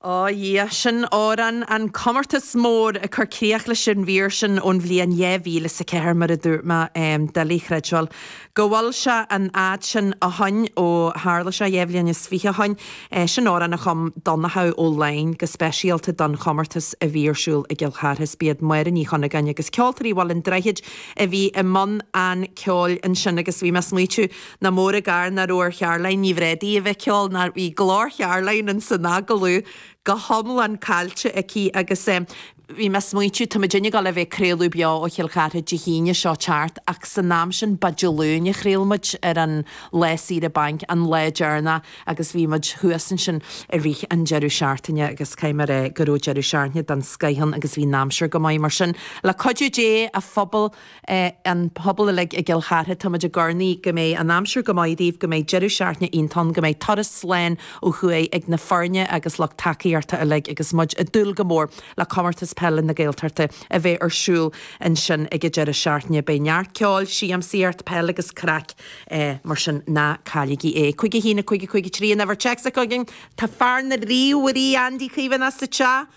Ó, a Dhia! Sin amhrán an comórtas mór ag cur críoch leis an mhír sin ón bhliain dhá mhíle is a ceathair, mar a dúirt mé, doiligh a chreidbheáil go bhfuil sé an fhad sin ó shoin, ó tharla sé dhá bhliain is fiche ó shoin. Sin amhrán a chum Donnchadh Ó Laighin go speisialta don chomórtas a bhí ar siúl i gCill Chartha is b'iad Máire Ní Chuinneagáin agus Ceoltóirí Bhaile an Droichid a bhí i mbun an cheoil ansin agus bhí mé a smaoitiú Nár mhór an gar nach raibh ar Charoline Ní Bhrádaigh a bheith ag ceol nó bhí glór Charoline insan agallamh go hiomlán caillte aici agus eh bhí mé a' smaoitiú tá muidinne ag gabháil a bheith a' craoladh beo ó Chill Chartha Dé hAoine seo ag teacht ach san am sin ba Dé Luain a chraol muid ar an lá saoire bainc an lá deireanach agus bhí muid thuas ansin i rith an deireadh seachtaine agus caithfidh mé a rá eh go raibh deireadh seachtaine den scoith ann agus bhí an aimsir go maith mar sin le cuidiú Dé a Phobail an pobal uilig i gCill Chartha, tá muid ag urnaí go mbeidh an aimsir go maith daoibh, go mbeidh deireadh seachtaine iontach ann, go mbeidh turas slán ó thuaidh ag na foirne agus lucht tacaíochta uilig agus muid ag dúil go mór le Comórtas Peile na Gaeltachta a bheidh ar siúl ansin ag an deireadh seachtaine. Beidh neart ceoil, siamsaíocht, peil agus craic mar sin ná cailligí é. Cúig a haon, a cúig, a cúig a trí an uimhir téacs atá againn. Tá fear na ríomhairí, Andy Caomhánach, sa teach.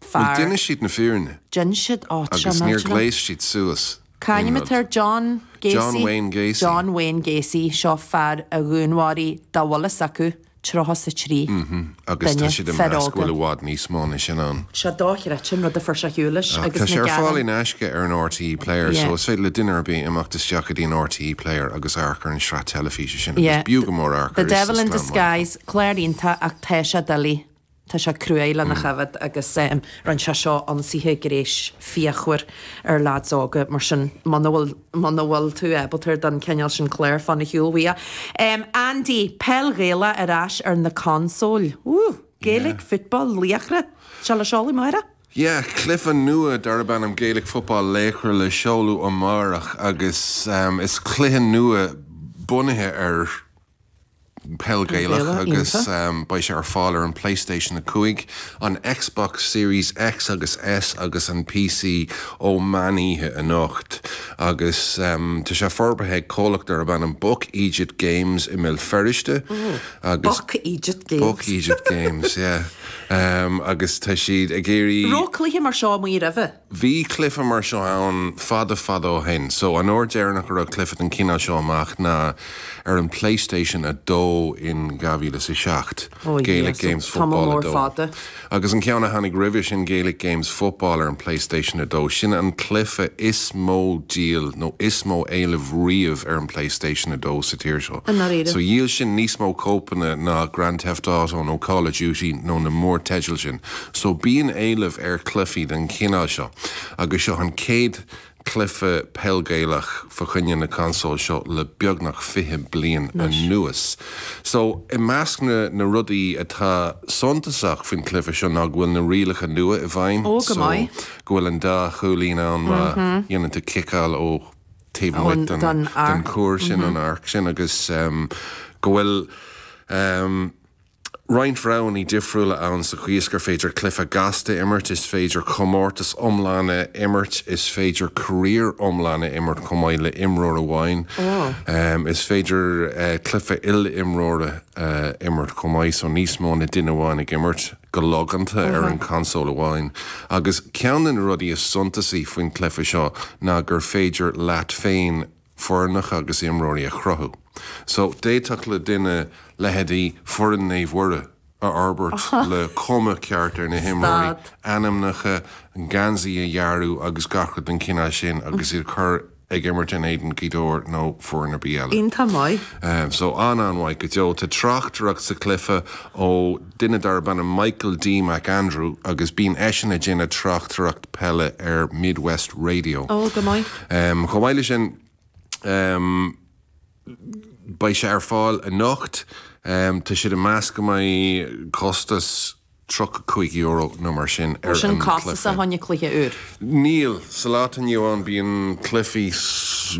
Bhuel, fearr. d'inis siad an fhírinne. D'ins siad áit seo Agus níor n-áiteanna. ghléas siad suas aon rud. Cá hainm atá air John John Gacy, Wayne Gacy. John Wayne Gacy, seo fear a dhúnmháraigh, dá bhfuil fhios acu, 33 duine, fir óga. Agus tá siad ag meas go bhfuil i bhfad níos mó ná sin ann. Sé dochreidte an rud a fuair sé ar shiúl leis Ach tá sé ar fáil in aisce ar an RTÉ Player so Yeah. is féidir le duine ar bith imeacht isteach go dtí an RTÉ Player agus amharc ar an sraith teilifíse sin agus Yeah. b'fhiú go mór amharc air. The Devil in Disguise, clár iontach ach tá sé doiligh. Tá sé cruaidh lena choimhéad agus rinne sé seo ionsaithe gnéis fíochmhar ar lads óga mar sin muna bhfuil muna bhfuil tú ábalta don cineál sin cláir fan ar shiúl uaidh. Andy, Peil Ghaelach ar ais ar na consóil. Woo! Gaelic Football Laochra seo le seoladh amárach. Yeah, cluife nua darb ainm Gaelic Football Laochra le seoladh amárach agus is cluiche nua bunaithe ar. Peil Gaelach agus beidh sé ar fáil ar an Playstation 5, an Xbox Series X agus S agus an PC ó mheán oíche anocht agus tá sé forbartha ag comhlacht darb ainm Buck Eejit Games i mBéal Feirste agus Buck Eejit Games. Buck Eejit Games, yeah. Agus tá siad ag iarraidh. Raibh cluiche mar seo amuigh roimhe? Bhí cluife mar seo ann fada fada ó shin so an uair deireanach a raibh cluife den chineál seo amach ná ar an Playstation 2 in 2007, Gaelic Games Football 2. Oh yes, tamall mór fada. Agus an ceann a tháinig roimhe sin Gaelic Games Football ar an Playstation 2, sin an cluife is mó díol nó is mó éileamh riamh ar an Playstation 2 sa tír seo. I ndáiríre. So dhíol sin níos mó cóipeanna ná Grand Theft Auto nó Call of Duty nó na mór-teidil sin. So bíonn éileamh ar cluifí den chineál seo agus seo an chéad cluife Peil Gaelach fá choinne na consóil seo le beagnach fiche bliain anuas. So i measc na rudaí atá suntasach faoin cluife seo ná go bhfuil na rialacha nua i bhfeidhm so go bhfuil an dá chúilín ann má dhéanann tú ciceáil ó taobh amuigh den chuar sin, an arc sin, agus go bhfuil. roinnt roghannaí difriúla ann sa chaoi is gur féidir cluife gasta a imirt, is féidir comórtas iomlán a imirt, is féidir career iomlán a imirt chomh maith le imreoir amháin. Is féidir cluife il-imreoir a imirt chomh maith so níos mó ná duine amháin ag imirt go logánta ar an console amháin. Agus ceann de na rudaí is suntasaí faoin cluife seo ná gur féidir leat féin, foirneacha agus imreoirí a chruthú. So, d'fhéadfadh le duine leithéidí foireann Naomh Mhuire a fhorbairt le cuma ceart ar na himreoirí, ainmneacha, geansaí a dhearadh agus gach rud den chineál sin agus iad a chur ag imirt in éadan Ghaoth Dobhair nó foireann ar bith eile. Iontach maith. So, an-an-mhaith go deo. Tá tráchtaireacht sa chluife ó. duine darb ainm Michael D. McAndrew agus bíonn eisean ag déanamh tráchtaireacht peile ar Midwest Radio. Ó, go maith. Chomh maith le sin beidh sé ar fáil anocht. Tá siad ag meas go mbeidh costas €35 nó mar sin ar an cluiche. Níl sin costasach fá choinne cluiche úr. Níl. Sa lá atá inniu ann bíonn cluifí,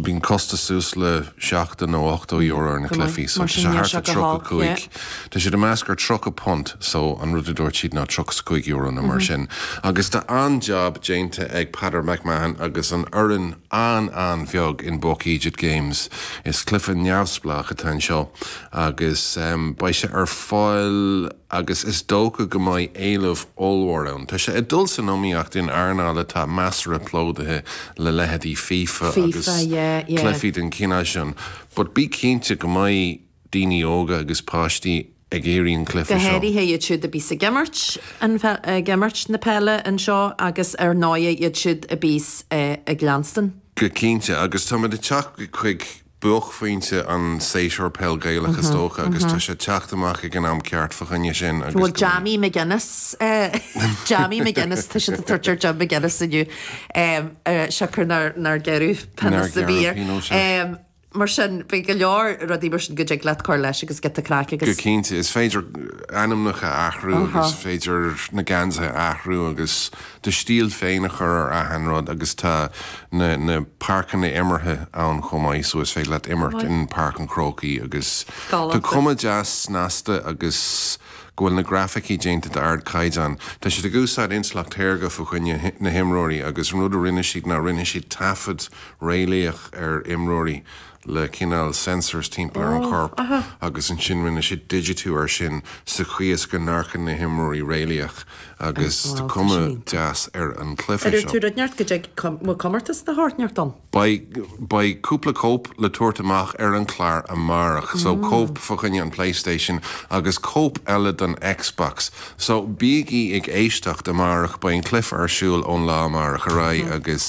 bíonn costas suas le seachtó nó ochtó euro ar na cluifí so tá sé thart ar tríocha cúig, tá siad ag meas thart ar tríocha punt so an rud a dúirt siad ná tríocha 's cúig euro nó mar sin agus tá an-jab déanta ag Peadar McMahon agus an fhoireann an-an-bheag in Buck Eejit Games. Is cluife neamhspleách atá anseo agus beidh sé ar fáil. agus is dócha go mbeidh éileamh ollmhór ann. Tá sé ag dul san iomaíocht in earnáil atá measartha plódaithe le leithéidí FIFA agus FIFA, yeah, yeah. cluichí den chineál sin but bí cinnte go mbeidh daoine óga agus páistí ag iarraidh an cluiche seo. Go háirithe iad siúd a bíos ag imirt an, ag imirt na peile anseo agus ar ndóighe iad siúd a bíos ag leanstan. Go cinnte. Agus táimid ag teacht chuig buaicphointe an séasúr peil Gaelach is dócha agus tá sé ag teacht amach ag an am ceart fa choinne sin agus Bhuel, go. Jammy McGuinness Jammy McGuinness tá siad ag tabhairt ar Jim McGuinness inniu siocair nár gearradh pionós ar bith air. Mar sin, beidh go leor rudaí mar sin go dtig leat cur leis agus giota craic agus. Go cinnte, is féidir ainmneacha a athrú agus is féidir na geansaithe a athrú agus do stíl féin a chur ar achan rud agus tá na páirceanna imeartha ann chomh maith so is féidir leat imirt in Páirc an Chrócaigh agus tá cuma deas snasta agus go bhfuil na grafaicí déanta d'ard caighdeán. Tá siad ag úsáid intleacht shaorga fa choinne na himreoirí agus an rud a rinne siad ná rinne siad taifead réalaíoch ar imreoirí le cineál sensors timpeall ar an chorp agus ansin rinne siad digitiú air sin sa chaoi is go n-amharcfadh na himreoirí réalaíoch agus tá cuma deas ar an cluiche seo. Ar dhúirt tú rud ínteacht go dtig? Bhfuil comórtas de shórt ínteacht ann? Beidh cúpla cóip le tabhairt amach ar an clár amárach so cóip fa choinne an Playstation agus cóip eile don Xbox so bígí ag éisteacht amárach beidh an cluiche ar siúl ón lá amárach ar aghaidh agus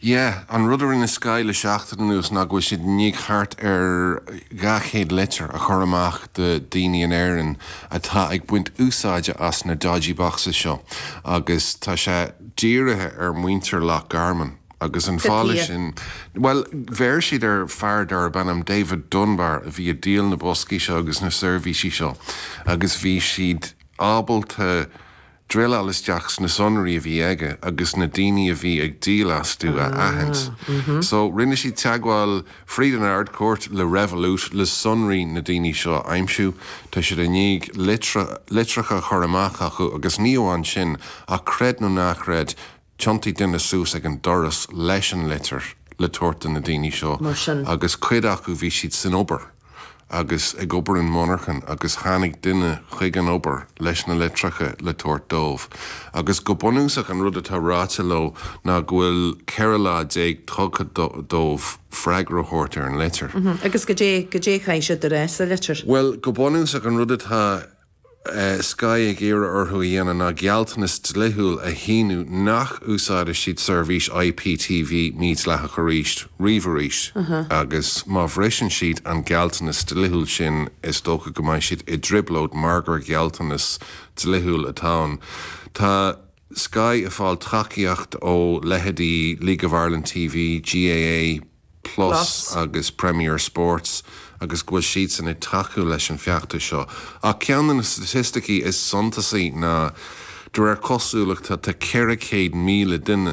Yeah, an rud a rinne Sky le seachtain anuas ná go bhfuil siad i ndiaidh thart ar 200 litir a chur amach do daoine in Éirinn atá ag baint úsáide as na dodgy boxes seo agus tá sé dírithe ar mhuintir Loch Garman agus an fáth leis sin, bhuel, bheir siad ar fear darb ainm David Dunbar a bhí ag díol na boscaí seo agus na seirbhísí seo agus bhí siad ábalta, druileáil isteach sna sonraí a bhí aige agus na daoine a bhí ag díol astu a aithint. So, rinne siad teagmháil fríd an Ard-Chúirt le Revolut le sonraí na daoine seo a aimsiú. Tá siad i ndiaidh litreacha a chur amach acu agus ní amháin sin ach creid nó ná creid, Thionntaigh duine suas ag an doras leis an litir le tabhairt do na daoine seo Mar sin. agus cuid acu bhí siad san obair agus ag obair i monarchan agus tháinig duine chuig an obair leis na litreacha le tabhairt dóibh agus go bunúsach an rud atá ráite leo ná go bhfuil 14 lá tugtha dóibh freagra a thabhairt ar an litir. Agus goidé, goidé a chaithfidh siad a rá sa litir? Bhuel go bunúsach an rud atá. Sky ag iarraidh orthu a dhéanamh ná gealltanas dlithiúil a shíniú nach úsáidfidh siad seirbhís IPTV mídhleathach ariamh arís agus má bhriseann siad an gealltanas dlithiúil sin is dócha go mbeidh siad i dtrioblóid mar gur gealltanas dlithiúil atá ann. Tá Sky ag fáil tacaíocht ó leitheidí League of Ireland TV, GAA, Plus agus Premier Sports agus go bhfuil siadsan ag tacú leis an feachtas seo. Ach ceann de na staitisticí is suntasaí ná de réir cosúlachta tá 400,000 duine,